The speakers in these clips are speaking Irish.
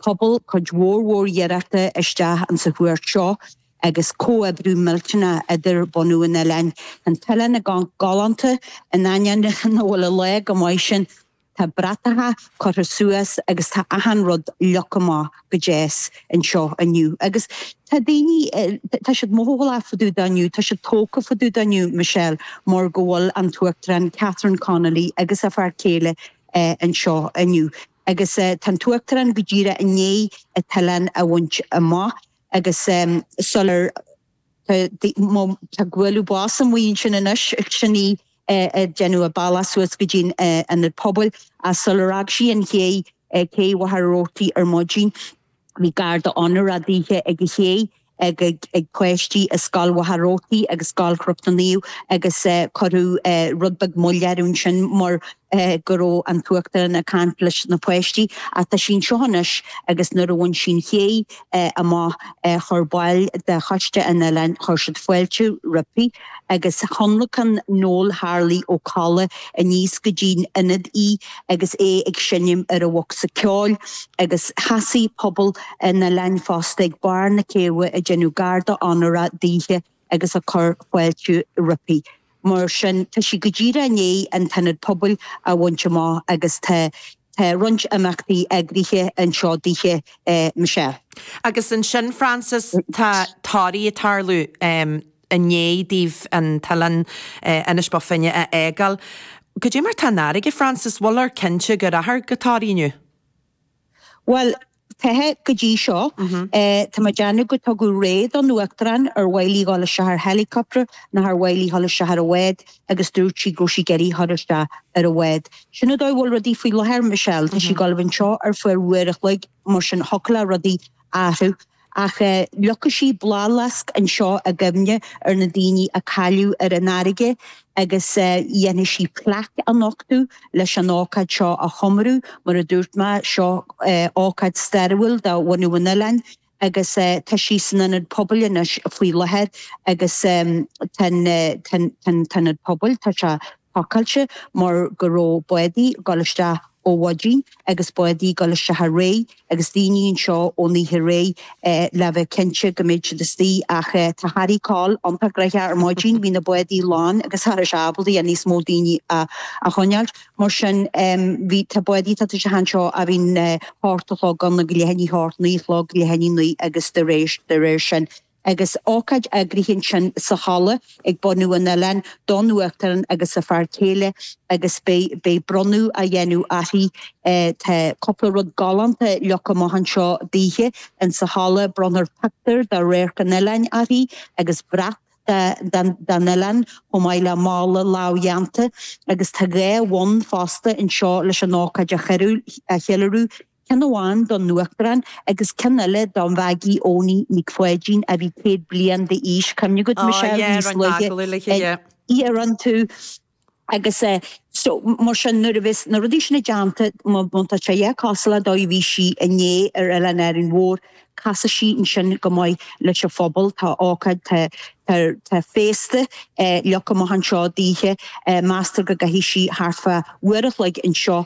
pobal cuid mhór mhór iarrachta isteach insa chuairt seo agus comhoibriú millteanach idir bunadh an oileáin. Tá an t-oileán ag amharc galánta, in ainneoin nach bhfuil an lá chomh maith sin. Tá bratacha curtha suas agus tá achan rud leagtha amach go deas anseo inniu. Agus tá daoine, tá siad mothálach fá dtaobh de inniu, tá siad tógtha fá dtaobh de inniu, Michelle, mar go bhfuil an tUachtarán Catherine Connolly agus a fear céile anseo inniu. Agus tá an tUachtarán go díreach i ndiaidh an t-oileán a bhaint amach agus sular tá bualadh bos amuigh ansin anois, sin í ag déanamh a bealach suas go dtí an Ionad Pobail, sular fhág sí an chéidh cé Mhachaire Rabhartaigh ar maidin. Bhí garda onóra daoithe ag an ché, ag páistí i Scoil Mhachaire Rabhartaigh agus Scoil Chnoc na Naomh agus cuireadh rud beag moill air ansin mar go raibh an tUachtarán ag caint leis na páistí. Ach tá sí anseo anois agus nuair a bhain sí an ché amach chuir baill de choiste an oileáin, chuir siad fáilte roimpi. agus thionlacan Noel Harley Ó Colla aníos go dtí'n Ionad í agus é ag seinm ar a bhocsa ceoil, agus sheasaigh pobal an oileáin fosta ag barr na céibhe ag déanamh garda onóra daoithe agus ag cur fáilte roimpi. Mar sin, tá sí go díreach i ndiaidh an t-ionad pobail a bhaint amach agus tá tá roinnt imeachtaí eagraithe anseo daoithe Michelle. Agus ansin, Frances, tá Toraigh ag tarlú. i ndiaidh daoibh an t-oileán Inis Bó Finne a fhágáil. Cad é mar tá an fharraige, Frances, bhfuiltear cinnte go rachfar go Toraigh inniu? Bhuel, cinnte go dtí seo. Tá mé ag déanamh gur tugadh rogha don Uachtarán ar mhaith léi a dhul isteach ar helicopter, nó ar mhaith léi a dhul isteach ar a bhád, agus dúirt sí go raibh sí ag iarraidh dhul isteach ar a bhád. Sin an dóigh a bhfuil rudaí faoi láthair, Michelle. Tá sí ag dul a bheith anseo ar feadh uair a chloig, mar sin thiocfadh le rudaí athrú. Ach leagfaidh sí bláthfhleasc anseo i gcuimhne ar na daoine a cailleadh ar an fharraige, agus déanfaidh sí plaic a nochtadh leis an ócáid seo a chomóradh, mar a dúirt mé, seo ócáid stairiúil do bhunadh an oileáin, agus tá sí san Ionad Pobail anois faoi láthair, agus tá an tIonad Pobail, tá sé. pacáilte mar go raibh bádaí ag dul isteach ó mhaidin agus bádaí ag dul isteach aréir agus daoine anseo ón oíche aréir le bheith cinnte go mbeadh siad istigh ach tá Harry Coll iontach gnoitheach ar maidin, bhí na bádaí lán agus cha raibh sé ábalta níos mó daoine a choinneáilt mar sin bhí, tá bádaí ag teacht isteach anseo ó bhí an hocht a chlog ann, leath i ndiaidh a hocht, naoi a chlog, leath i ndiaidh a naoi agus dá réir sin. Agus ócáid eagraithe ansin sa halla ag bunadh an oileáin don Uachtarán agus a fear céile agus beidh beidh bronnadh á dhéanamh uirthi. Tá cúpla rud galánta leagtha amach anseo daoithe in sa halla. Bronnfar pictiúr de radharc an oileáin uirthi agus brat de de den oileán chomh maith le mála lámhdhéanta. Agus tá dhá bhonn fosta anseo leis an ócáid a cheiliúradh. ceann amháin don Uachtarán agus ceann eile do Mhaggie Eoiní Nic Pháidín a bhí céad bliain d'aois. Cuimhnigh ort Michelle níos luaithe ag iarrann tú agus eh so mar sin nuair a bheas na rudaí sin déanta má tá sé a dhath cosúil le dóigh a bhí sí inné ar Oileán Árainn Mhór casfaidh sí ansin go maith leis an phobal tá ócáid tá tá tá féasta eh leagtha amach anseo daoithe eh meastar go gcaithfidh sí thart fá uair a chloig anseo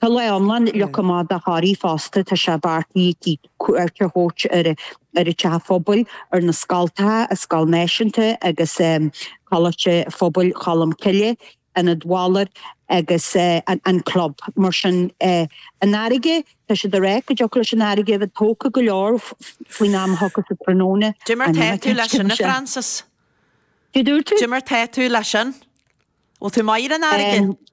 Tá lá iomlán leagtha amach do Thoraigh fosta, tá sé beartaithe cuairt a thabhairt ar an teach phobail, ar na scoltacha, an scoil náisiúnta agus Coláiste Phobail Cholm Cille, Ionad Bhaloir agus an club. Mar sin, an fharraige, tá siad ag rá go dtiocfadh leis an fharraige a bheith tógtha go leor faoin am a thiocfas an tráthnóna. Cad é mar atá tú leis sin, a Frances? Céard a dúirt tú? Cad é mar atá tú leis sin? Bhfuil tú maith ar an fharraige?